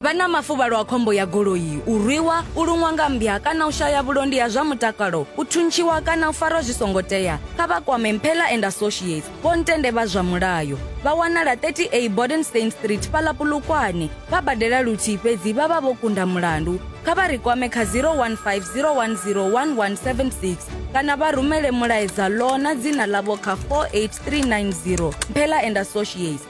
Vha na mafuvhalo a khombo ya goloi, u rwiwa, u luṅwa nga mmbya kana u shaya vhulondi ha zwa mutakalo, u thuntshiwa kana u farwa zwi songo tea, kha vha kwame Mphela and Associates, vho ntende vha zwa mulayo. Vha wanala 30A Bodenstein Street fhaḽa Polokwane. Vha badela luthihi fhedzi vha vha vho kunda mulandu. Kha vha ri kwame kha 015 010 1176 kana vha rumele mulaedza ḽo na dzina ḽavho kha 48390. Mphela and Associates.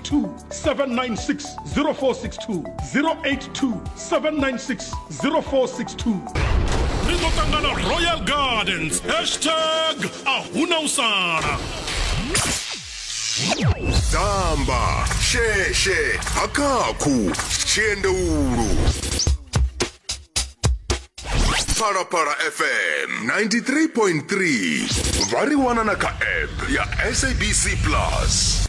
796-0462 082-796-0462 ri ḓo ṱangana royal gardens hashtag ahuna u sala dzamba sheshe hakakhu tshiendeulu phalaphala fm 93.3 vha ri wana na kha app ya sabc plus